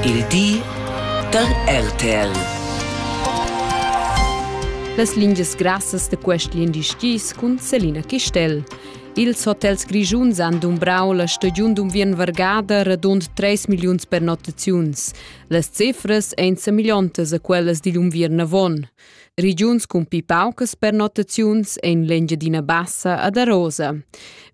Il di da RTL. Las lingias grassas da quest lindi skis cun Selina Chistel. Ils hotels grischuns han dumbrau la stagiun d'unviern vargada radund 3 milliuns pernottaziuns. Las cifras ein semillontas a quellas digl unviern avon. Regiuns cun pi paucas pernottaziuns ein l'Engiadina Bassa ad Arosa.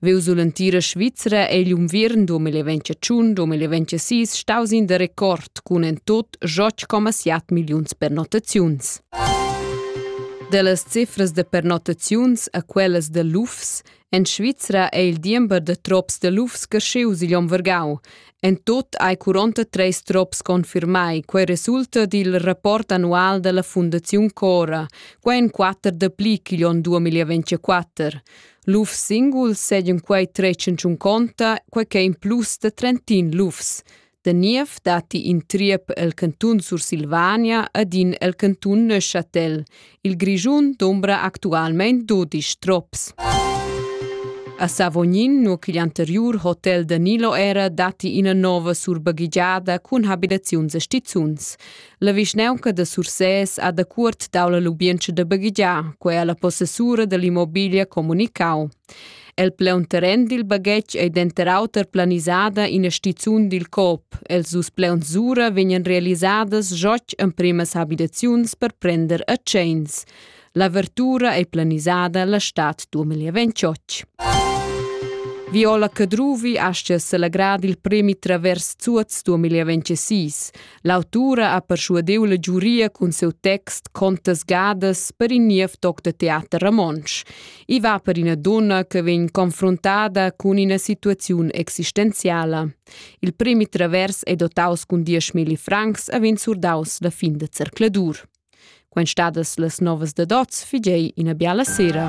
Veu sull'entira Svizra ei l'unviern 2021 2026 staus in de record cun en tot 8,7 milliuns pernottaziuns. Dellas cifras de pernottaziuns a quellas de lufs En Svizra è il diember da trops da lufs creschius igl onn vargau. En tut hai 43 trops confirmai. Quei resulta dil rapport annual dalla Fundaziun Cora. Quei en quatter dapli ch'igl onn 2024. Lufs singuls seigien quei 301 conta, quei ch'è in plus da 31 lufs. Da niev datti in triep el cantun Sursilvania ed in el cantun Neuchâtel. Il Grischun dombra actualmein dudisch trops. A Savognin, nur ch'igl anteriur hotel Danilo era, datti ina nova surbaghigiada cun habitaziuns e stizuns. La vischnaunca da Sursès ha da cuort dau la lubientscha da baghigiar, quei ha la possessura dall'immobiglia comunicau. El pleunterren dil baghetg ei denter auter planisada ina stizun dil COP. Els dus pleunsura vegnan realisadas gioch empremas habitaziuns per prender a tscheins. L'avertura ei planisada la stad 2028. Viola Cadruvi aschia selagrad il premi Travers Zuoz 2026. L'autura ha perschuadeu la giuria cun seu text Contas gadas per in niev toc da teater romontsch. I va per ina donna che vegn confruntada cun ina situaziun existenziala. Il premi Travers è dotaus cun 10.000 francs e vegn surdaus la fin de zercladur. Quant stadas las novas da dots figei ina biala sera.